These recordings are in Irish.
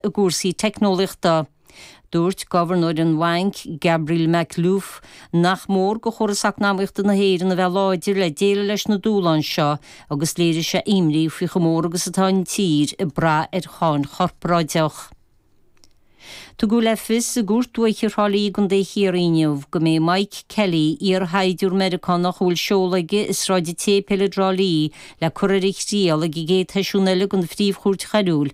i gcúrsaí teicneolaíochta. Dúirt gobharnóir an bhainc, Gabriel Makhlouf, nach mór do chóras eacnamaíochta na hÉireann a bheith láidir le déileáil leis na dúshláin seo agus léirigh sé imní faoi chomh mór agus atá an tír ag brath ar cháin chorparáideach. Tugadh le fios i gCúirt Dúiche Thrá Lí i gContae Chiarraí inniu go mbeidh Mike Kelly, iar-shaighdiúir Meiriceánach a bhfuil seoladh aige i Sráid an tSéipéil i dTrá Lí, le cur ar a thriail ag an gcéad sheisiún eile den Phríomh-Chúirt Choiriúil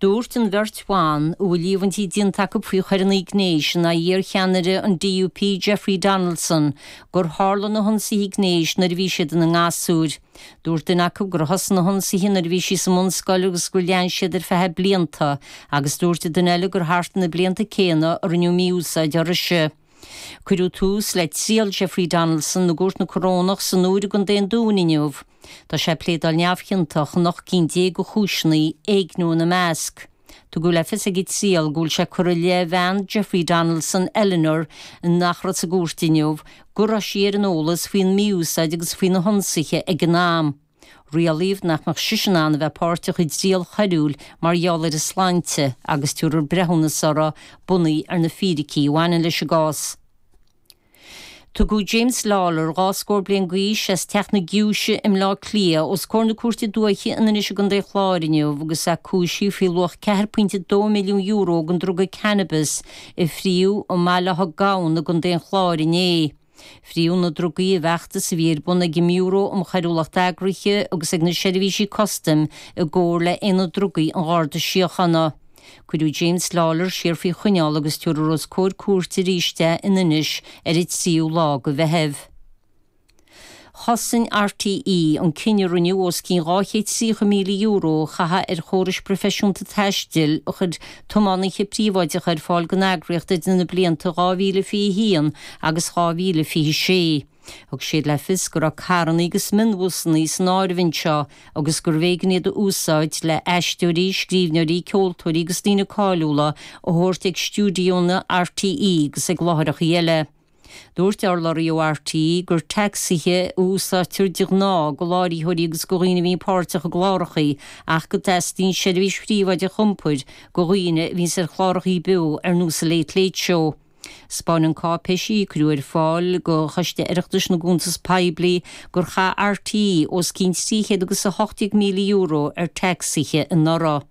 Dúirt an bheirt bhan, a bhfuil líomhaintí déanta acu faoi choireanna gnéis in aghaidh iarcheannaire an DUP Jeffrey Donaldson, gur tharla na hionsaithe gnéis nuair a bhí siad ina ngasúir. Dúirt duine acu gur thosaigh na hionsaithe nuair a bhí sí sa mbunscoil agus gur lean siad ar feadh blianta agus dúirt an duine eile gur thart ar na blianta céanna a rinneadh mí-úsáid uirthise. Cuireadh tús le triail Jeffrey Donaldson i gCúirt na Corónach san Iúir i gContae an Dúin inniu. Tá sé ag pléadáil neamhchiontach in ocht gcinn déag de chúiseanna, éigniú ina measc. Tugadh le fios ag an triail go bhfuil sé curtha i leith bhean Jeffrey Donaldson, Eleanor, nach raibh sa gcúirt inniu, go raibh sí ar an eolas faoin mí-úsáid agus faoi na hionsaithe ag an am. Rialaíodh nach mbeadh sise in ann a bheith páirteach i dtriail choiriúil mar gheall ar a sláinte agus tabharfar breithiúnas uirthi bunaithe ar na fíricí a bhaineann leis an gcás. Tugadh James Lawlor, dhá scór bliain d'aois, as Teach na Giúise i mBleá Cliath, os comhair na Cúirte Dúiche in Inis i gContae an Chláir inniu agus é cúisithe faoi luach €4.2 milliún den druga cannabis a frítheadh i mBéal Átha Gabhann i gContae an Chláir inné. Frítheadh na drugaí i bhfeachtas a bhí ar bun ag an mBiúró um Choiriúlacht Eagraithe agus ag na seirbhísí custaim i gcomhar le hAonad Drugaí an Gharda Síochána. Cuireadh James Lawlor siar faoi choinneáil agus tabharfar os comhair cúirte arís é in Inis ar an tríú lá de Mheitheamh. Chosain RTÉ an cinneadh a rinneadh os cionn €230,000 a chaitheamh ar chórais phroifisiúnta taistil a chuir tiománaithe príobháideacha ar fáil don eagraíocht idir na blianta 2021 agus 2026. Thug siad le fios go raibh carranna agus mionbhusanna san áireamh anseo agus gurbh éigean iad a úsáid le haisteoirí, scríbhneoirí, ceoltóirí agus daoine cáiliúla a thabhairt chuig stiúideónna RTÉ agus chuig láithreachaí eile. Dúirt urlabhraí ó RTÉ gur tacsaithe a úsáidtear de ghnáth go láithreoirí agus go dhaoine a bhíonn páirteach i gclárachaí ach go dteastaíonn seirbhís phríobháideach iompair go dhaoine a bhíonns ar chlárachaí beo ar nós The Late Late Show. 'Spáin cáipéisí a cuireadh ar fáil go Choiste Oireachtais na gCuntas Poiblí gur chaith RTÉ os cionn trí chéad agus a hocht déag míle euro ar thacsaithe anuraidh.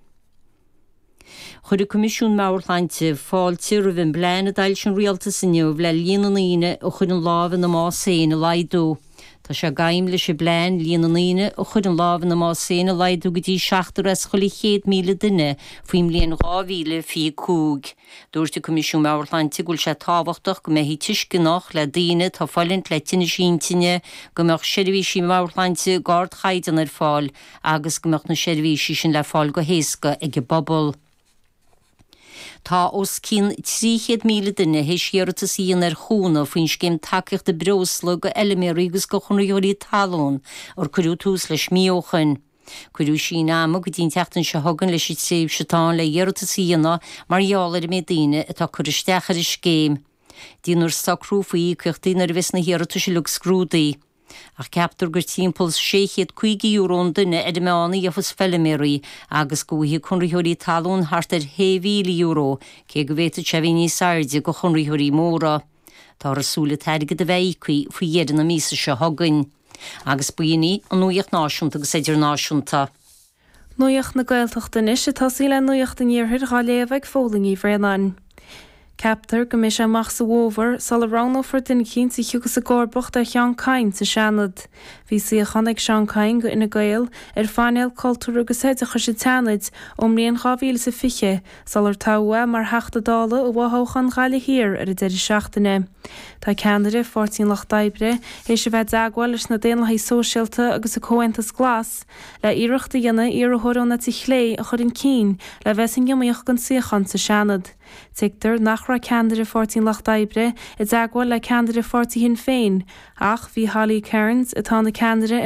Chuir an Coimisiún Meabhairshláinte fáilte roimh an bplean a d'fhoilsigh an Rialtas inniu le líon na ndaoine a chuireann lámh ina mbás féin a laghdú. Tá sé d'aidhm leis an bplean líon na ndaoine a chuireann lámh ina mbás féin a laghdú go dtí seachtar as chuile chéad míle duine faoin mbliain 2025. Dúirt an Coimisiún Meabhairshláinte go bhfuil sé tábhachtach go mbeifí tuisceanach le daoine atá ag fulaingt le tinneas intinne, go mbeadh seirbhísí meabhairshláinte d'ardchaighdeán ar fáil, agus go mbeadh na seirbhísí sin le fáil go héasca ag an bpobal. Tá os cionn 300,000 duine tar éis iarratas a dhéanamh ar chúnamh faoin Scéim Tacaíochta Breosla do Fheilméaraí agus do Chonraitheoirí Talún ó cuireadh tús leis mí ó shin. Cuireadh síneadh ama go dtí an tseachtain seo chugainn leis an tréimhse atá ann le hiarratas a dhéanamh mar gheall ar an méid daoine atá ag cur isteach ar an scéim. Déanfar socrú faoi íocaíochtaí nuair a bheas na hiarratais uilig scrúdaithe. Ach ceaptar gur timpeall €650 an duine ar an meán a gheofas feiliméaraí agus go bhfaighidh conraitheoirí talún thart ar €6,000, cé go bhféadfadh sé a bheith níos airde do chonraitheoirí móra. Táthar ag súil an t-airgead a bheith íoctha faoi dheireadh na míosa seo chugainn. Agus b'in í an nuaíocht náisiúnta agus idirnáisiúnta. Nuaíocht na Gaeltachta anois ag tosaí le nuaíocht an Iarthair dhá léamh ag Phóilín Ní Bhraonáin. Ceaptar go mbeidh sé amach sa bhfómhar sula roghnófar duine a thiocfas i gcomharbacht ar Sheán Kyne sa Seanad. Bhí suíochán ag Seán Kyne Fhine Gael ar phainéal cultúir agus oideachais an tSeanaid ón mbliain 2020 sular toghadh é mar Theachta Dála i bhfothoghchán Ghaillimh Thiar ar an deireadh seachtaine. Tá ceannaire Pháirtí an Lucht Oibre théis a bheith i dteagmháil leis na Daonlathaigh Shóisialta agus an Comhaontas Glas, le hiarracht a dhéanamh iarrthóir ón eite chlé a chur chun cinn le bheith san iomaíocht don suíochán sa Seanad. Tuigtear nach raibh ceannaire Pháirtí an Lucht Oibre i dteagmháil le ceannaire Pháirtí Shinn Féin ach bhí Holly Cairns, atá ina ceannaire ar